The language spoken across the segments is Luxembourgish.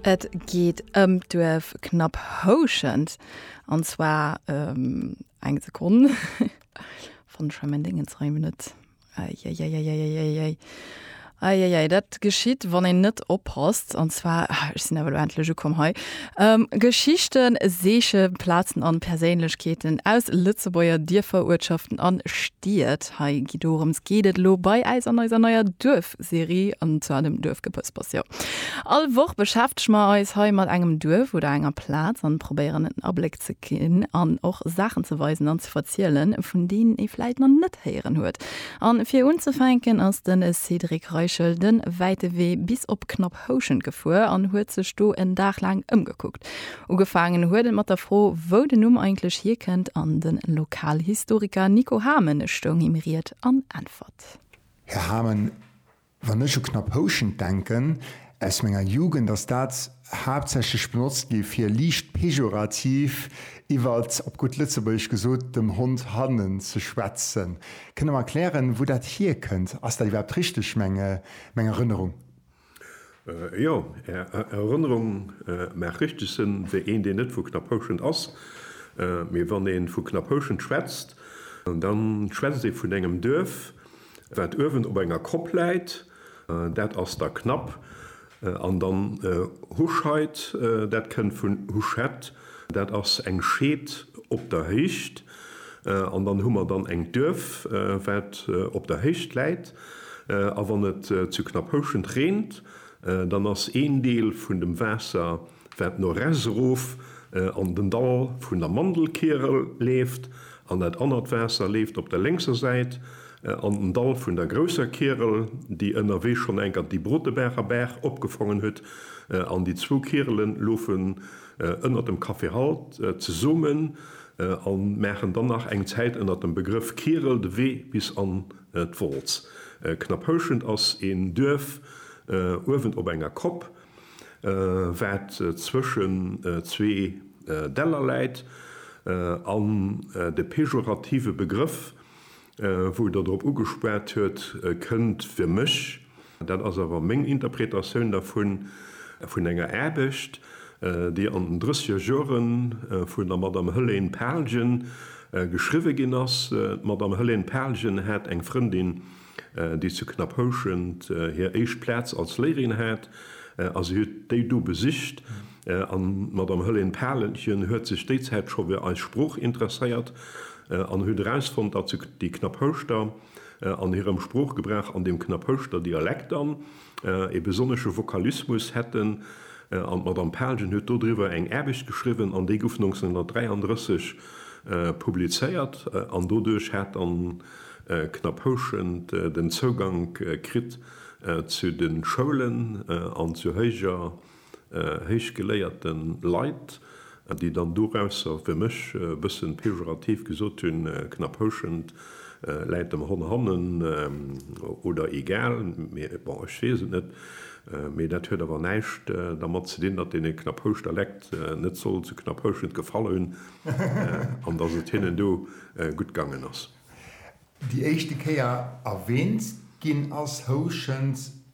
Et geet ëm d'Duerf Knapphouschent, an zwar ëm, eng Sekonn, fannen ech mol mäin Déngens rei mech net, eieieieieiei, eieiei, dat geschitt wann een net oppasst, an zwar, ah, ech sinn awer elo endlech ukomm hei, Geschichten, Seechen, Plazen an Perséinlechkeeten aus Lëtzebuerger Dierfer, Uertschaften an Stied, hei gi dorëms geet et elo bei äis an eiser neier Duerf. Serie an zu engem Duerf gepëspers. Jo, all Woch beschäftege mer eis hei mat engem Duerf oder enger Plaz an probéieren en Abléck ze ginn an och Saachen ze weisen an ze verzielen, vun deenen ee vläit nach net héieren huet. An fir unzefänken ass den Cédric Reichel den wäite Wee bis op knapp Houschent gefuer an huet sech do en Dag laang ëmgekuckt. Ugefaangen huet et mat der Fro, wou den Numm eigentlech hierkënnt an den Lokalhistoriker Nico Hamen stoung him Ried an Äntwert. Här Hamon, wann ech u Knapp Houschent denken, aus menger Jugend ass dat haaptsächlech benotzt gi fir liicht pejorativ iwwer, op gutt Lëtzebuergesch gesot, dem Hond hannen ze schwätzen. Kënnt Der mer erklären, wou dat hierkënnt? Ass dat iwwerhaapt richteg, meng Erënnerung? Jo, Är Erënnerung maacht richteg Sënn, wéi een, deen net vu Knapphouschent ass. Mee wann ee vu Knapphouschent schwätzt, da schwätzt ee vun engem Duerf, wat uewen op enger Kopp läit, dat ass da Knapp. An dann Huscheid, dat kënnt vun Huschett, dat ass eng Scheed op der Héicht. An dann hu mer dann eng Duerf, wat op der Héicht läit. A wann et zu Knapphouschent reent, dann ass een Deel vun dem Waasser, wat no res erof an den Dall vun der Mandelkierel leeft, an dat anert Waasser leeft op der lénkser Säit an den Dall vun der grousser Kierel, déi ënnerwee schonn enker déi Brotebaacher Baach opgefongen huet. An déi zwou Kierele lofe ënnert dem Café Halt zesummen a maachen dann nach eng Zäit ënnert dem Begrëff Kierel de Wee bis an d'Wolz. Knapphouschent ass een Duerf uewen op enger Kopp, wat zwëschen zwee Däller läit an de pejorative Begrëff Wou Der drop ugespat huet, kënnt fir mech, dat ass awer meng Interpretatioun dervun, vun enger Aarbecht, déi an den drëssiger Jore vun der Madame Hëlène Palgen geschriwwe ginn ass. D'Madame Hëlène Palgen hat eng Frëndin, déi zu Knapphouschent hir éischt Plaz als Léierin hat, a si huet déi do besicht. An d'Madame Hëllén Palentjen huet sech déi Zäit scho fir eis Sprooch interesséiert an huet erausfonnt, datt se déi Knapphouschter an hirem Sproochgebrauch an dem Knapphouschter Dialekt an ee besonnesche Vokalismus hätten. An d'Madame Palentjen huet dodriwwer eng Aarbecht geschriwwen an déi gouf 1933 publizéiert an doduerch hat dann Knapphouschen den Zougank kritt zu de Schoulen an zu héijer héichgeléierte Leit, déi dann dorausser fir mech e bëssen pejorativ gesot hunn, Knaphouschent läit dem Hon hannen oder egal, mee bon, ech weess et net. Mee dat huet awer näischt dermat ze dinn, datt deene Knaphouschter Lekt net soll zu Knaphouschent gefall hunn an datt et hinnen do gutt gaangen ass. Déi éischte Kéier erwähnt ginn ass Houschent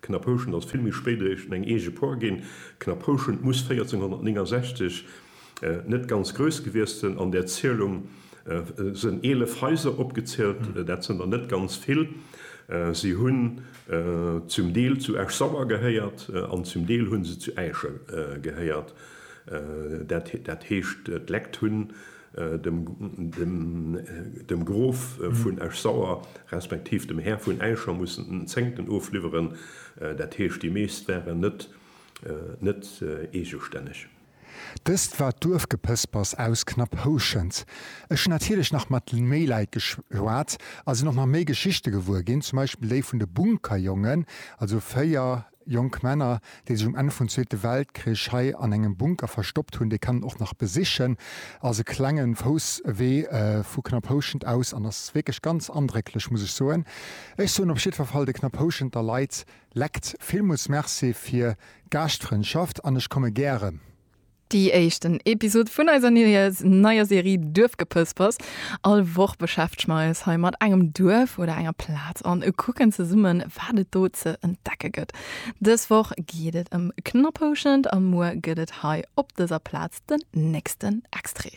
Knaphouschent ass vill méi spéit eréischt eng eege Por ginn. Knaphouschent muss 1469 net ganz grouss gewiesst sinn. An där Zielung sinn eelef Haiser opgezielt. Dat sinn der net ganz vill. Si hunn zum Deel zu Esch-Sauer gehéiert an zum Deel hu se zu Äischen gehéiert. Dat heescht d'Lekt hunn. dem Grof vun Esch-Sauer, respektiv dem Här vun Äischer mussen den Zéngten ofliwweren, dat heescht, déi meescht waren net net eegestänneg. Dëst war d'Duerfgepëspers aus Knapphouschent. Ech hunn natierlech nach mat méi Leit geschwat a sinn och nach méi Geschichte gewuer ginn, zum Beispill déi vun de Bunkerjongen, also 4 Jonk Männer, déi sech um Enn vun Zweete Weltkrich hei an engem Bunker verstoppt hunn, déi kann een och nach besichen. Ass e klenge Fousswee vu Knaphouschent aus an ass wierklech ganz andrécklech, muss ech soen. Ech soen op jiddwer Fall de Knaphouschenter Leit lekt villmools Merci fir d'Gaaschtfrëndschaft an ech komme gäre. Déi éischten Episod vun eiser neier Serie Duerfgepëspers. All Woch beschäftege mer eis hei mat engem Duerf oder enger Plaz an kucken zesummen, wat et do ze entdecke gëtt. Dës Woch geet et ëm Knapphouschent a muer gëtt et hei op dëser Plaz den nächsten Extrait.